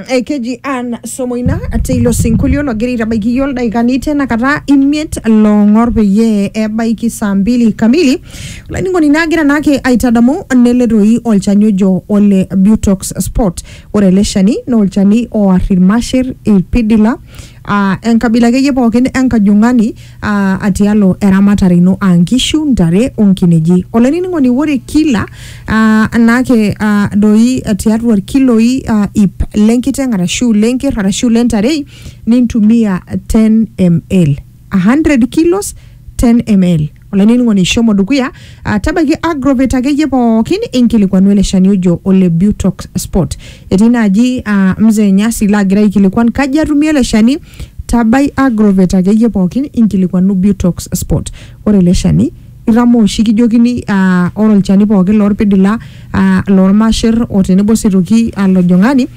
ekeji Ann Somoina teilo sinkolio logira aitabaiki iyiook ildaikani tena kata imiet loong'or peyie ebaiki saa mbili kamili olainining'oni naagira naake aitadamu nele toi olchani ojo ole Butox Spot ore ele shani naa olchani oar irmasher irpidila aa enkabila akeyie pookin enkajung'ani aa atialo eramatare ino aa nkishu, ntare onkineji. Olainining'oni ore kila aa anaake aa doi tiatua irkiloi aa ip lenkiteng arashu lenker arashu lentarei nintumia 10 ml. 100 kilos 10 ml. olainining'oni shomo dukuya ah, tabaiki agrovet akeyie pookin inkilikuanu ele shani ojo ole butox spot etii naaji ah, mzee nyasi laagira aikilikuan kaji atumie ele shani tabai agrovet akeyie pookin inkilikuanu butox spot ore ele shani itamoo oshi kijokini ah, ore olchani pookin lorpidila ah, lormasher o tenebo sitoki ah, lojong'ani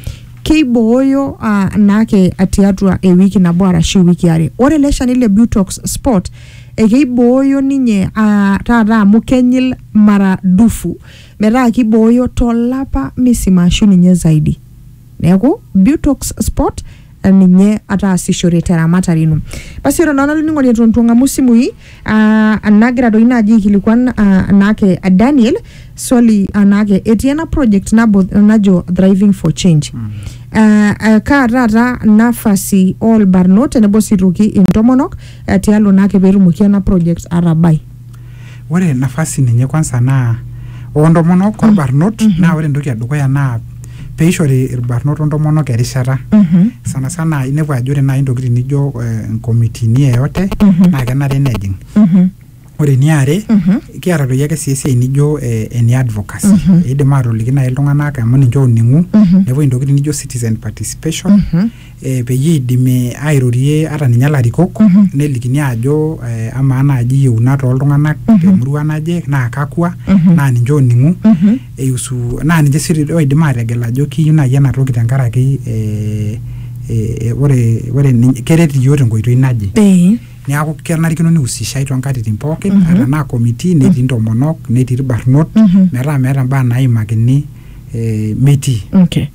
keibooyo uh, naake tiatua ewiki nabo arashu ewiki are ore ele shani le butox spot Ekeibooyo ninye aa taata amu kenyil mara dufu metaa keibooyo to lapa misima ashu ninye zaidi. Neeku Butox Sport ninye ataasishore te ramatare ino. Basi ore naa olainining'oni eton eitu eng'amu isimui aa nagira doi naaji aikilikuan aa naake Daniel swali aa naake etii ena project nabo najo Thriving for Change. Aa kaa taata nafasi oo lbarnot tenebo sii aitoki intomonok eh, tialo naake peetumoki ena project atabai. ore nafasi ninye kwanza naa oontomonok orbarnot naa ore entoki edukuya naa peishori irbarnot ontomonok erishata Mhm. sana sana inepu ajo ore naaji intokitin nijo eh, nkomitini yeyote Mhm. naa kenare nejing Mhm. ore eniare kiata doi ake sii esiai nijo eh, ene advocacy eidim aatoliki naaji iltung'anak amu ninche ooning'u nepuo intokitin nijo citizen participation eh, peyie eidimi airorie ata ninye ilarikok nelikini aajo eh, amaa naaji iyieunat ooltung'anak temurua naje naa kakwa naa ninche ooning'u eiusu naa ninche sii doi oidim aategel ajo kiyieu naaji ena toki tenkaraki eh, eh, eh, ore ore ninye- keret iyiook tenkoitoi naje Eh. Neaku kenarikino neusishai too nkatitin pookin mm -hmm. ata naa committee netii mm -hmm. ntomonok netii irbarnot mm -hmm. metaa meeta mbaa naimakini eh, metii. Okay.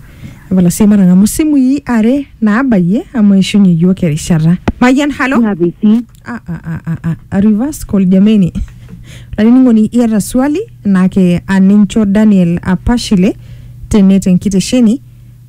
Epala sii matang'amu simui are naabayie amu eishunye iyiook erishata. Mayian halo. Ah, ah, ah, ah, ah. A reverse call jameni. Laining'oni iata swali naake anincho Daniel Apashile tene tenkitesheni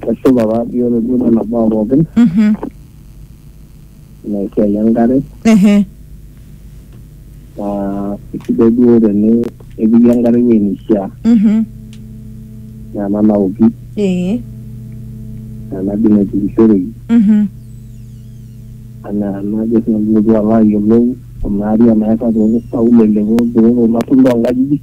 Kesipa taadii ore duo nena baa pookin Mhm. ina esiai enkare Ehe. naa isidai duo teni epiki enkare ewueji neishiaa Mhm. naa ena naoki Ee. naa ena dii naitukishoreki Mhm. anaa enajo sii nanu pilotu alo ayiolou kuna ariak nairrag toonkaulele olturot olasulo oonkajijik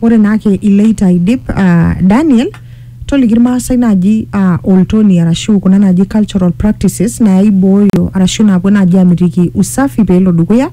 Ore naake iloito aidip uh, Daniel toliki irmaasai naaji uh, oltoni arashu kuna naaji cultural practices naaibooyo arashu naapuo naaji amitiki usafi peelo dukuya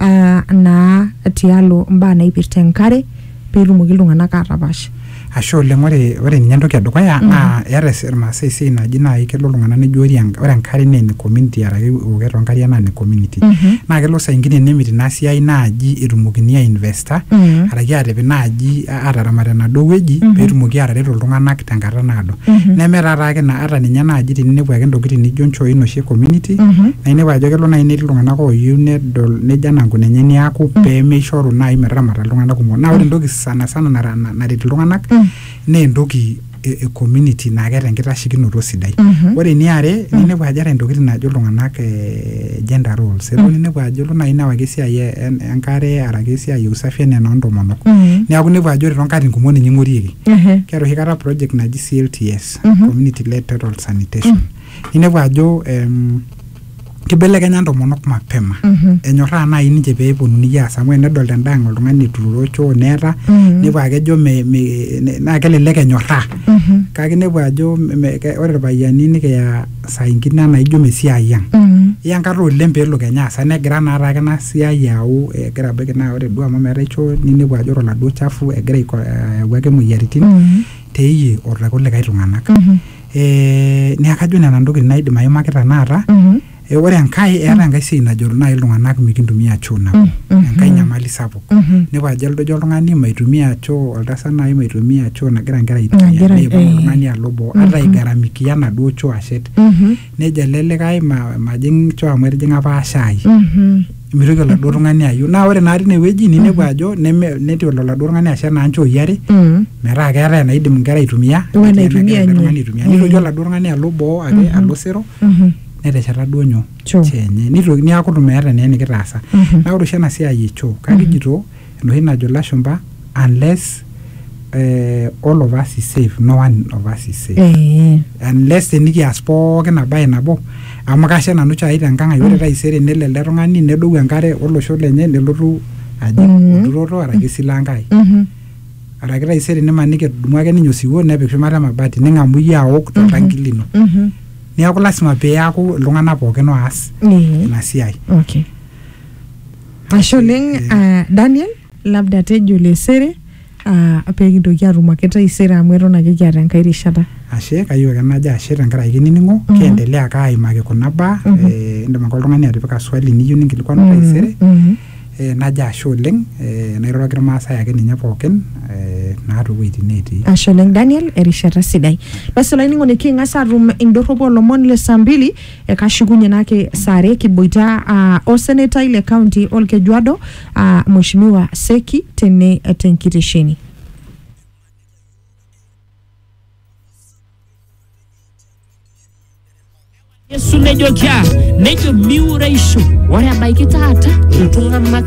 uh, naa tialo mbaa naipirta enkare peetumoki iltung'anak aatapash. ashe oleng ore ore ninye entoki edukuya naa eeta es- irmaasai esiai naji naaji kelo iltung'anak nejo ore en- ore enkare naa ene community araki eokoto oonkariak naa ene community naa kelo saa ingine nemit ina siai naaji etumokini ainvesta ta Mhm. araki aatipik naaji a- aataramat enaduo wueji Mhm. peetumoki aatareto iltung'anak tenkata naado Mhm. neme taata ake na ata ninye naaji tininepu ake intokitin nijo nchoi noshi e community Mhm. naa inepu ajo kelo naaji netii iltung'anak ooyieu nedol nejo anaa nkuna enye niaku peemeishoru naaji metaramata iltung'anak kumok naa ore entoki sana sana nara- na- naret iltung'anak Mm. naa entoki e, e community naa keeta enkitashekinoto sidai ore eniare ninepu ajo eeta intokitin naajo iltung'anak eh, gender roles elo ninepu ajo elo naaji newaki esiai e- en- enkare araki esiai e usafi enaa enoontomonok neeku inepu ajo ore toonkatitin kumok ninye ing'orieki Ehe. keeta oshi kata project naji CLTS community led total sanitation ninepu ajo em, kibelekenya ntomonok mapema Mhm. enyorraa naaji ninche pee eponunui aas amu enedolta endaa ang oltung'ani eturoro choo neeta Mhm. nepuo akejo me, me, ne- naa kelelek enyorraa Mhm. kake inepu ajo me- me- ke- ore irpayiani nikiya saa ingine anaa ijo mesiai ang Mhm. iya enkata oleng peelo kenya asa negira naa taake ina siai ayau egira abaiki naa ore duo amu meetae choo ninepu ajo ore oladuo chafu egira aiko- ayau ake imoyiaritin Mhm. teiyie o tekulikae tung'anak Mhm. Eh, neeku kajo nena ntokitin naidim aimaki tenakata Mhm. Eh, ore enkae eeta enkae siai najo naaji iltung'anak mikintumia choo nabo Mhm. enkae nyamali sapuk Mhm. nepuo ajo eldojo oltung'ani maitumia choo oltasat naaji maitumia choo nagira nkera aitumia Nagira- neipang eh. oltung'ani alo boo ata Mhm. aigaramikia enaduo choo ashet Mhm. nejo ele likae ma- majing choo amu etijing'a apa shai Mhm. mitoki oladuo tung'ani ayieu naa ore naa tine wueji ninepu ajo neme netii oladuo tung'ani ashet naa nchooi are Mm. metaa keetae enaidim inkera aitumia O netii enaitumia enagira ele tung'ani ninye. aitumia nitoki oladuo tung'ani alo boo ake alo sero Mhm. netesheta duo nyoo Choo. choo enye nitoki niaku itu meeta naa enikitaasa Mhm. naa ore oshi ena siai e choo kakijito Enoshi najo ilashumba unless uh, all of us is safe no one of us is safe Eh, unless tenikias pookin abaye nabo amu kashe nanu chai tenkang ai ore taisere nelo ele tung'ani nedou enkare olosho lenye nelotu aji Mhm. olturoto araki esila enkai mhm, araki taisere nimaniki etudumu ake ninye osiwuo nepik shumata emabati ning'amu iyie aok toltanki lino mhm. neeku lasima piaku iltung'anak pookin oas Eh, ina siai okay. Ashe oleng ah, Daniel, labda tejo lesere ah, pee kintoki atum ake taisere amu eton ake kiata enkae rishata. Ashe, kayieu ake najo ashe tenkaraki kinining'o, kiendelea ake aimaki kuna baa, eh, indim ake oltung'ani atipika swali niyieu ninkilikuanu taisere, Mhm. eh, najo ashe oleng, eh, nairoroki irmaasai ake ninye pookin, eh, naa towueitin netii. Ashe oleng Daniel, erishata sidai. Basi olainining'oni king'as atum indorropu olomon le saa mbili Ekashukunye nake saa are kiboita aa osenetai le kaunti Olkejuado aa Mweshimiwa Seki tene tenkitesheni. Yesu nejoki aa nejo miure ishu ore ebaiki taata iltung'anak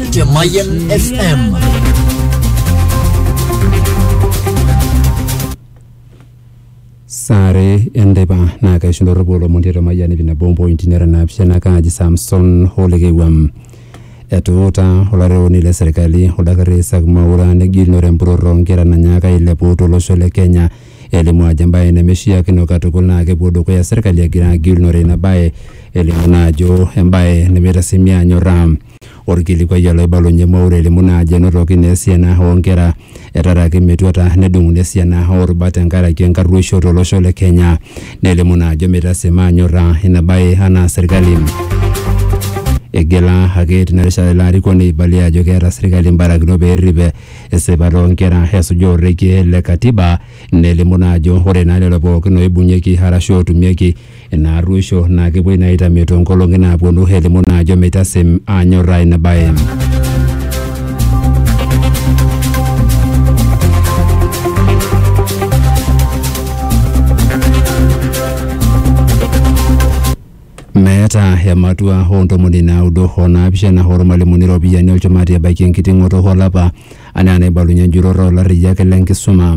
Mayan FM. saare enteipa naa kaishunoropo olomoni eto mayiani pina bombo intinera naapishana kaaji samson holekewam etuuta olarewoni le serkali oldakitari isak maura negilunore empurrorro oonkera nanyaaka ailepu tolosho le kenya elimu ajo embaye nemeshiakino katukul naa kepuo dukuya serkali egira agilunore ina baye elimu naa ajo embaye nemeitasimia anyorraa Olkilikuai olaibalunye Mwaura elimu naa ajo enotoki naa esiana oo nkera etaraki metuata nedung'uni esiana oo rubat tenkaraki enkarruoisho to losho le Kenya nelimu naa ajo meitasima anyorra ina bae anaa serkali. Igila ake tina rishata ilo arikoni aibalie ajo keeta serkali mbarakinot pee errip esipata oo nkera esuja orekie le katiba nelimu naa ajo ore naa lelo pookin oibung'ieki arashu ootumieki Ina arruosho naa kepuoi naa aitamie too nkolong'i naapuonu elimu naa ajo meitasem aanyorraa ina bae. Meeta ematua oo ntomoni naudo o naapishana oolmalimuni iropiyiani olchumati ebaiki enkiting'oto olapa anaa enaibalunye enjurrorro oo larriyiak le nkisuma.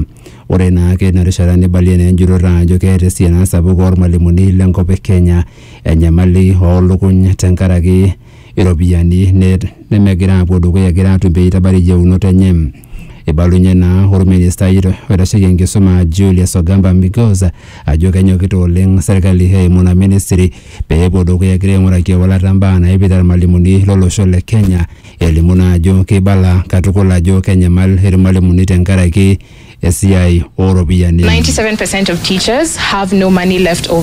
Ore naa keina rishata neibalie naa enjurore ajo keeta esiana sapuk oolmalimuni le nkop e Kenya enyamali oo lukuny tenkaraki iropiyiani nemegira aapuo dukuya egira aatum pee eitabari iyieunot enye. Eibalunye naa olministai oitasheki enkisuma Julius Ogamba Migos ajo kenyokita oleng serkali eimu ina ministry pee epuo dukuya egira aing'uraki ewalata imbaa naipirta ilmalimuni lo losho le Kenya Elimu naa ajo keibala katukul ajo kenyamal ilmalimuni tenkaraki esiai ooropiyiani. 97% of teachers have no money left over.